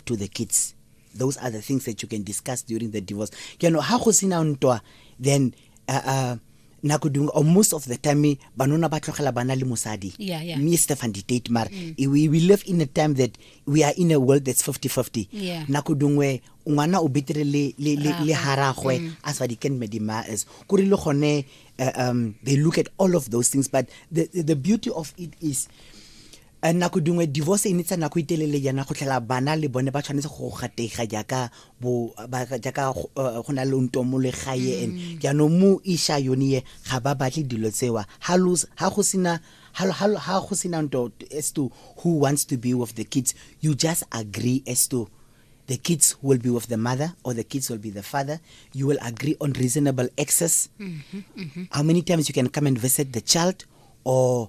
to the kids those are the things that you can discuss during the divorce ke no ha go sina ntwa then uh, uh, nako dingwe or most of the time banona ba tlogela bana le mosadi yeah, yeah. me stefan dictate mara mm. we, we live in a time that we are in a world that's 50-50 yeah. nako dingwe ngwana o betere le, le, le, le haragwe mm. as what he can medima is kore le gone uh, um, they look at all of those things but the, the beauty of it is A Nako dingwe divorce e ne tsa nako e telele jaana go tlhela bana le bone ba tshwanetse go gatega jaaka bo ba jaaka go eh, go na le ntomo le gae and jaanong mo isha yone ye ga ba batle dilo tsewa ha lo ha go sena ha lo- ha lo- ha go sena nto as to who wants to be with the kids you just agree as to the kids will be with the mother or the kids will be the father you will agree on reasonable access how many times you can come and visit the child or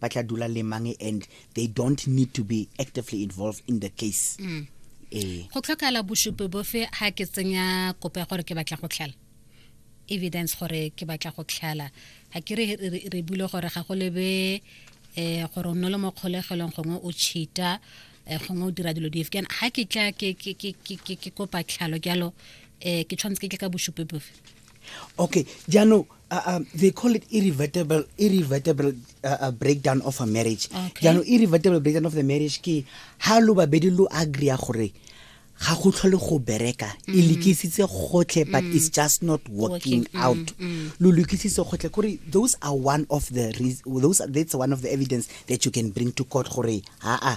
ba tla dula le mang and they don't need to be actively involved in the case mm. ee go tlhokala bosupi bofe ha ke tsenya kopo ya gore ke batla go tlhala evidence gore ke batla go tlhala ga ke re bule gore ga go lebe eh gore o nne le mo kgolegelong gongwe o cheata eh, gongwe o dira dilo dife kana ga ke tla ke kopa tlhalo jalo um ke tshwanetse ke tle ka bosupi bofe okay jaanong uh, uh, they call it irrevertible irrevertible uh, uh, breakdown of a marriage okay. jaanong irrevertible breakdown of the marriage ke ha lo babedi lo agree gore ga go tlhole go bereka e mm. lekisitse gotlhe but mm. it's just not working mm, out lo lekisitse gotlhe kore those are one of the those are, that's one of the evidence that you can bring to court gore aa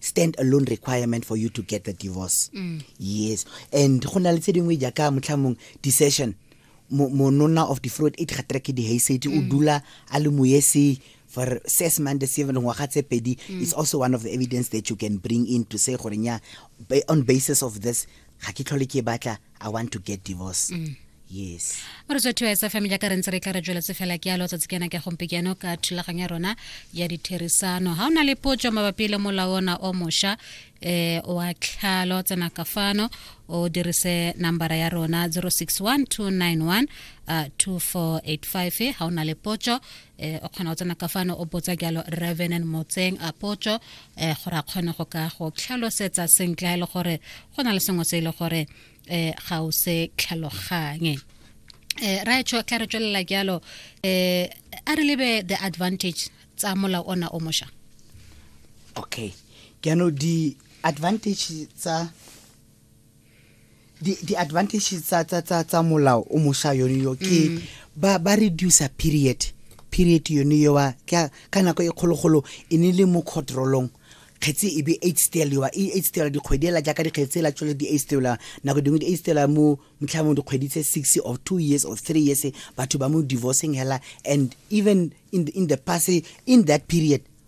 stand alone requirement for you to get the divorce mm. yes and go na le tse dingwe jaaka motlhamong decision monona of the fruit e ga trek di haysate o mm. dula a le moyese for six months seven ngwaga tse pedi mm. is also one of the evidence that you can bring in to say gore nya on basis of this ga ke tlhole ke batla i want to get divorce mm. yes re tswa thuwa sa family ka re ntse re tla re tsweletse fela ke alo tsatsi kena ke gompe keno ka thulaganyo ya rona ya ditherisano ha ona le potso mabapi le molao ona o mosha eh wa tlhalo tsena ka fano o dirise nambara ya rona 061291 uh, 2485 ha ona le potso eh o kgona go tsena ka fano o botsa jalo revenant motseng a potso eh gore a kgone go ka go tlhalosetsa sentle e le gore go na le sengwe se e le gore eh ga o se tlhaloganye eh ra etsho ka re tswelela jalo eh a re lebe the advantage tsa mola ona o mosha okay ke no di advantage tsa di di advantage tsa tsa tsa tsa molao o mosha yone yo ke mm. ba ba reduce period period yone yo wa ka ka nako e kgologolo e ne le mo controlong kgetse e be eight stela yowa e eight stela dikgwedi ela jaaka dikgetse ela tswele di eight stela nako dingwe di eight stela mo motlhamong dikgwedi tse six of two years of three years batho ba mo divorcing hela and even in the, in the past in that period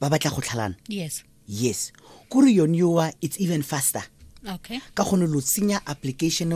ba batla go tlhalana yes yes kore yone yowa it's even faster okay ka gone lo tsenya application